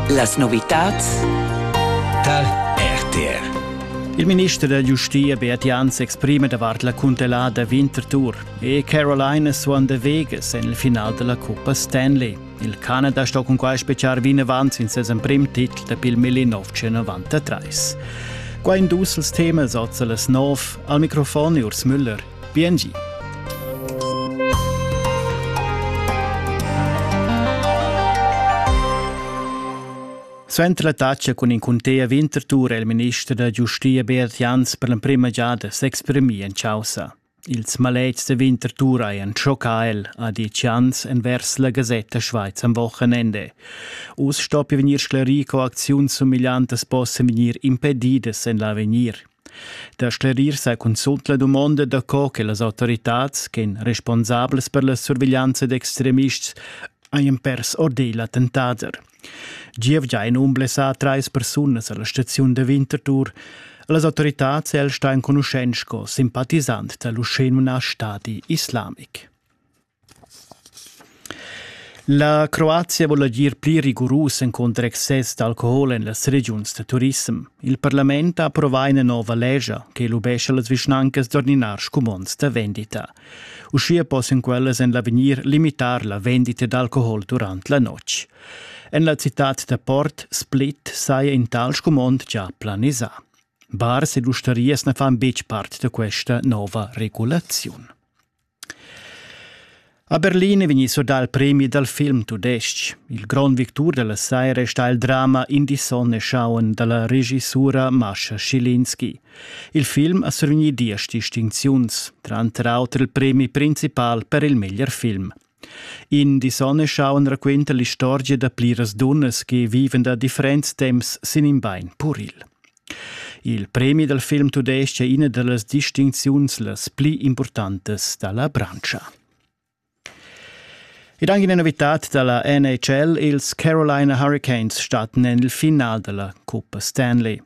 Las novitads tar RTR. Il minister da giustia Beat Jan s'exprima davart la cuntellada Winterthur e Caroline suon de Vegas en il final della Coppa Stanley. Il Canada sto con quai speciar vinavant sin ses emprim titel da pil 1993. Qua in dus els temas oza las nov. Al microfon Urs Müller. Piengi. Suenter la tatscha cun in cunter Winterthur è il minister da giustia Beat Jans per l'emprima giada s'exprimì en chaussa. Ils maletgs da Winterthur hajan schoccà el, ha dit Jans envers la Gasetta Schweiz am Wochenende. Uss stoppia vegnir sclarì co acziuns sumigliantas possan vegnir impedidas en l'avegnir. Da sclerir sa cunzult la dumonda daco che las autoritads ch'ein responsablas per la surveglianza d'extremists hajan pers ordel attentader. Gievgia ein umblessà trais persunas alla staziun da Winterthur. Las autoritads el sta enconuschent sco simpatizant dall'uschè numnà Stadi islamic. La Croazia vul agir pli rigurus encunter excess d'alcohol en las regiuns da turissem. Il parlament ha approvà ina nova lescha che lubescha las vischnancas d'ordinar scumonds da vendita. Uschia possan quellas en l'avegnir limitar la vendita d'alcohol durant la notg. En la citad da Port Split saja in tal scumond già planisà. Bars ed ustarias na fan betg part da questa nova regulaziun. A Berlin è vegnì surdà il premi dal film tudestg. Il grond victur da la saira è stà il drama In die Sonne schauen da la regisura Mascha Schilinski. Il film ha survegnì diesch distincziuns, tranter auter il premi principal per il meglier film. In die Sonne schauen raquenta l'istorgia da pliras dunnas che viven da differents temps sin in bain puril. Il premi dal film tudestg è ina da las distincziuns las pli impurtantas da la branscha. Ed anche una novità dalla NHL, ils Carolina Hurricanes starten en il finale della Coppa Stanley.